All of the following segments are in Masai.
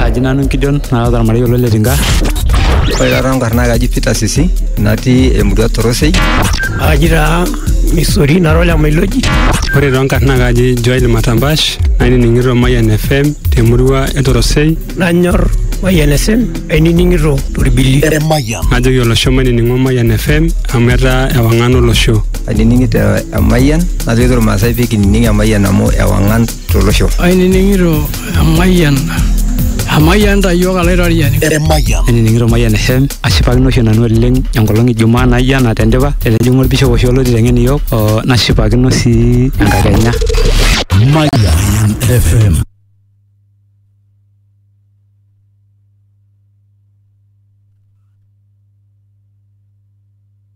aji nanu nkijon naata ormarei olo le tinka ore taata nkarn naa kaji Peter Sisi natii emurua Torosei aji taa misori nara ole mailoji ore toonkarn naa kaji Joel Matambash nainining'ito Mayian FM temurua e Torosei nanyor Mayian FM ainining'ito torbili Emayian. najoki olosho mainining'o Mayian FM amu etaa ewang'an olosho ainining'ito Emayian najoki irmaasai pee kinining Emayian amu ewang'an tolosho. Ainining'ito emayian emayian ta iyiook alaitoriani. Emayian. Ainining'ito Mayian FM ashipakino oshi nanu oleng enkolong e Jumaa naijo ena tendipa etijing'a olbishop oshi olo aiteng'en iyiook oo nashipakino sii enkakenya. Mayian FM.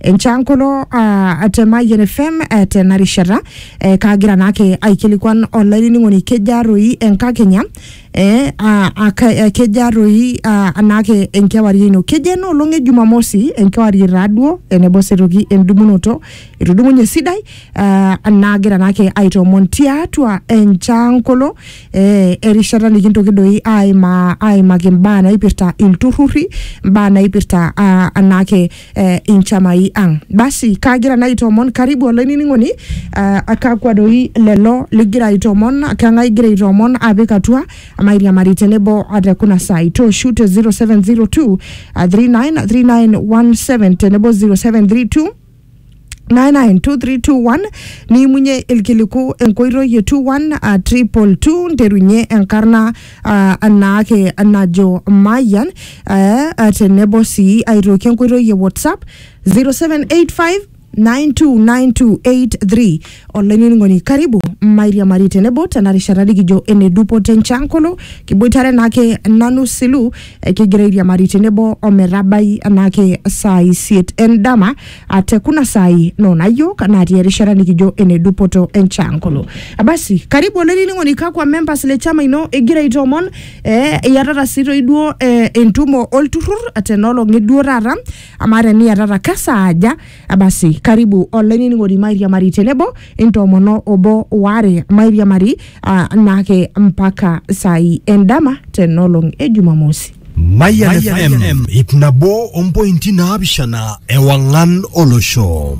enchankolo ah, te Mayian FM eh, tena rishata eh, kaagira naake aikilikuan olainining'oni kejaa toi enkakenya eh, ah, aka- eh, kejaa toi ah, anaake enkewarie ino kejaa ena olong e jumamosi enkewarie taaduo enebo setoki endumunoto etudumunye sidai ah, naagira naake aitoomon tiatua enchankolo eh, erishata nikintoki doi aima aimaki imbaa naipirta ilturrurri imbaa naipirta ah, anaake eh, inchamai ang basi kaagira naa aitoomon karibu olainining'oni uh, akakwa doi lelo ligira aitoomon kang'ae igira aitoomon apik atua mairiamari tenebo ate kuna saai tooshu te 0702 uh, 393917 tenebo 0732 99232 niimunye ilkiliku enkoitoi e 21 a triple two nterunye enkarna ah, anaake najo Mayian eh, ah, tenebo sii aitoki enkoitoi e WhatsApp 0785 929283 olainining'oni karibu mairiamari tenebo tena rishata nikijo ene dupoto enchankolo kiboitare naake nanu silu kigira airiamari tenebo ometabai enaake saa isiet endama ah, te kuna saai noona yiok natii erishata nikijo ene dupoto enchankolo basi karibu olainining'oni kakwa members le chama ino igira aitoomon eh, iyatata sii toi duo eh, entumo olturrur tenolong'i duo taata amaa teniyatata kesaaja Abasi, karibu olainining'oni mairiamari tenebo intoomono obo waare mairiamari ah, naake mpaka saai endama tenolong e Jumamosi. Mayan FM, ip nabo ompointi naapishana ewang'an olosho.